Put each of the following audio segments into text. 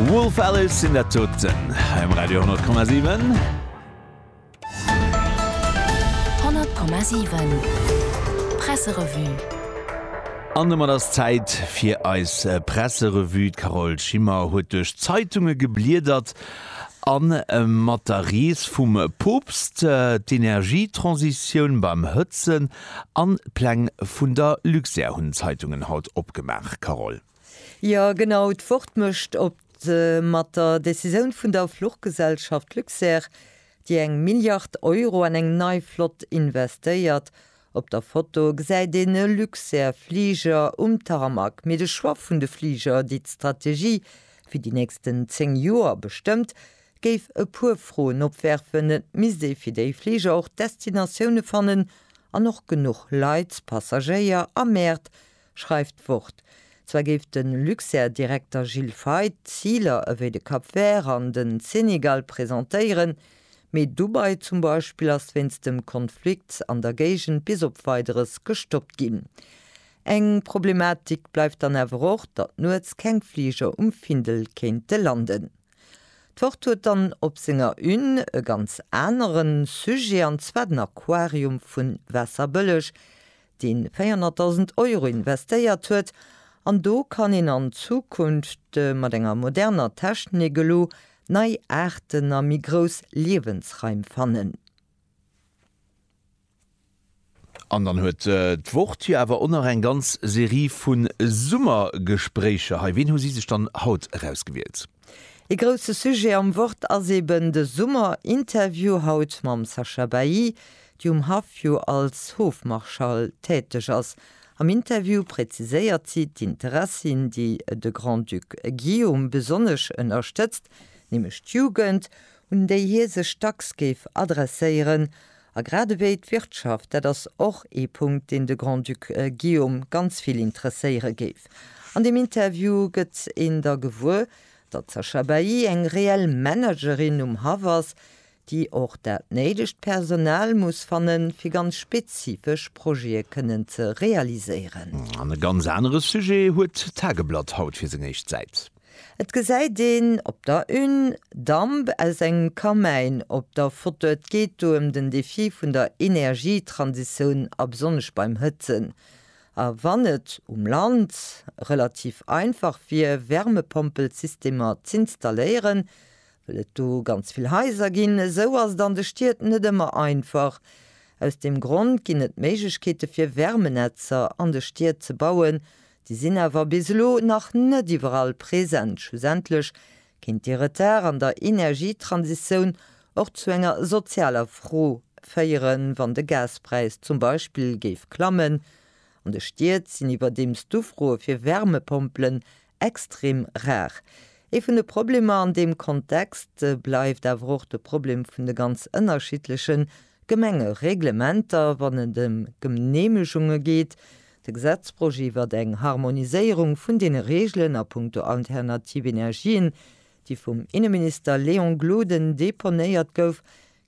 Wolf Alice sinn dat doten hei um Radio 10,7. 100,7 Presserevue. An domat ass d'Zäit fir eis Presserevue. D'Carole Schimmer huet duerch d'Zeitunge gebliedert a mat der Rees vum Poopst, d'Energietransitioun beim Hëtzen, An d'Pläng vun der Luxair hunn d'Zeitungen haut opgemaach, Carole. Jo genau, d'Wort mécht op. Mat der Decisioun vun der Fluchgesellschaft Luxair, déi eng Milliard Euro an eng nei Flott investéiert, op der Foto gesäit een e Luxair Fliger um Tarmac, mee de Choix vun de Fliger, déi d'Strategie fir déi nächsten 10 Joer bestëmmt, Géif e puer Froen opwerfen, et misst ee fir déi Fliger och Destinatioune fannen an och genuch Leit, Passagéier a Mäert, schreift d'Wort. Zwar géif de Luxair-Direkter Gilles Feith Ziler ewéi de Cap Vert an den Senegal presentéieren, mee Dubai zum Beispill ass wéinst dem Konflikt an der Géigend bis op Weideres gestoppt ginn. Eng Problematik bleift dann awer och, datt nuets keng Fliger um Findel kéinte landen. D'Wort huet dann op senger Une e ganz aneren Sujet, an zwar den Aquarium vun Waasserbëlleg, deen 400.000 Euro investéiert huet. An do kann een an Zukunft mat enger moderner Technik elo nei Aarten a méi grouss Liewensraim fannen. An dann huet d'Wort jo awer och nach eng ganz Serie vu Summergespréicher hei. Ween hu si sech dann haut erausgewielt? Ee grousse Sujet am Wort ass eben de Summer. Interview haut mam Sacha Bailly, déi um Haff jo als Hofmarschall täteg ass. Am Interview präziséiert si d'Interessien, déi de Grand-Duc Guillaume besonnesch ënnerstëtzt, nämlech d'Jugend, un déi hie sech dacks géif adresséieren, A grad ewéi d'Wirtschaft, dat ass och ee Punkt, deen de Grand-Duc Guillaume ganz vill interesséiere géif. An deem Interview gëtt een da gewuer, datt d'Sacha Bailly eng reell Managerin um Haff ass, déi och dat néidegt Personal muss fannen, fir ganz spezifesch Projete kënnen ze realiséieren. An e ganz anere Sujet huet d'Tageblatt haut fir seng éischt Säit. Et gesäit een op der Une Damp aus engem Kamäin op der Foto. Et geet do ëm den Defi vun der Energietransitioun a besonnesch beim Hëtzen. A wann et um Land relativ einfach wier Wärmepompelsystemer z'installéieren, wëll et do ganz vill Haiser ginn, esou ass et an de Stied net ëmmer einfach. Aus deem Grond ginn et Méiglechkeete fir Wärmenetzer an de Stied ze bauen, Déi sinn awer bis elo nach net iwwerall present. Schlussendlech kéint dee Retard an der Energietransitioun och zu enger sozialer Fro féieren, wann de Gaspräis zum Beispill géif klammen. An de Stied sinn iwwerdeems d'Ufroe fir Wärmepompelen extrem rar. Ee vun de Problemer an deem Kontext bleift awer och de Problem vun de ganz ënnerschiddleche Gemengereglementer, wann et ëm Genehmegunge geet, De Gesetzprojet iwwert eng Harmoniséierung vun deene Reegelen a puncto alternativ Energien, déi vum Inneminister Léon Gloden deponéiert gouf,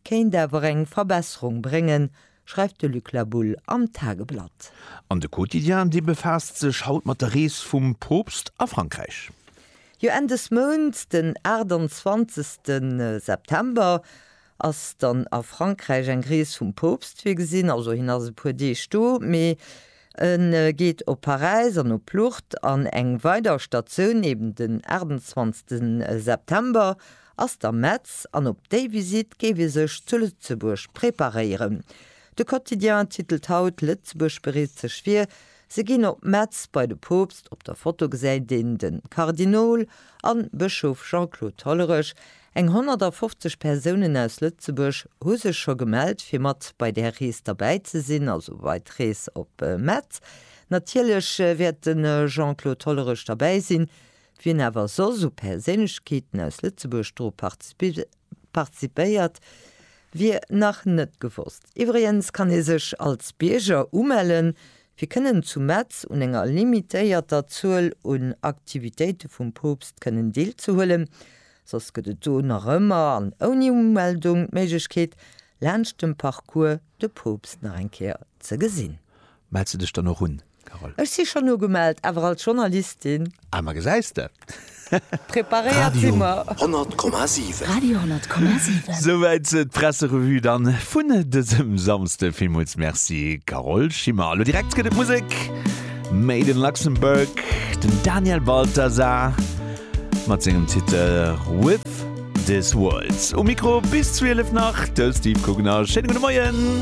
kéint awer eng Verbesserung bréngen, schreift de Luc Labulle am Tageblatt. An de Quotidien, dee befaasst sech haut mat der Rees vum Poopst a Frankräich. Jo, Enn des Mounts, den 28 September, ass dann a Frankräich eng Rees vum Poopst virgesinn, also hien ass e puer Deeg do, mee e geet op Paräis an op Lourdes an eng weider Statioun, eben den 28 September ass da Metz an op déi Visitt géif ee sech zu Lëtzebuerg preparéieren. De Quotidien titelt haut, Lëtzebuerg bereet sech vir, se ginn op Metz bei de Poopst. Op der Foto gesäit een de Kardinol a Bëschof Jean-Claude Hollerich, Eng 150 Persounen aus Lëtzebuerg hu sech scho gemellt fir mat bei där Rees derbäi ze sinn, also bei d'Rees op Metz. Natierlech wäert de Jean-Claude Hollerich derbäi sinn. Wien awer soss u Perséinlechkeeten aus Lëtzebuerg dru participéiert, wier nach net gewosst. Iwwregens kann ee sech als Bierger umellen, fir kënnen zu Metz un enger limitéierter Zuel un Aktivitéite vum Poopst kënnen deelzehuelen. Soss gëtt et do nach ëmmer, an ouni Umeldung, d'Méiglechkeet, laanscht dem Parcours de Poopst nach eng Kéier ze gesinn. Mells de dech dann och un, Carole? Ech si schonn ugemellt, awer als Journalistin. Ah, ma gesäis de! Preparéiert si mer. Radio 100 Komma 7. Radio 100 Komma 7. Souwäit d'Presserevue dann vun dësem Samsde. Villmools Merci, Carole Schimmer. Elo direkt gëtt et Musek, Made in Luxembourg, den Daniel Balthasar. Mat sengem Titel With This World um Mikro bis 12 nach de Steve Kugner. Schéine gudde Moien!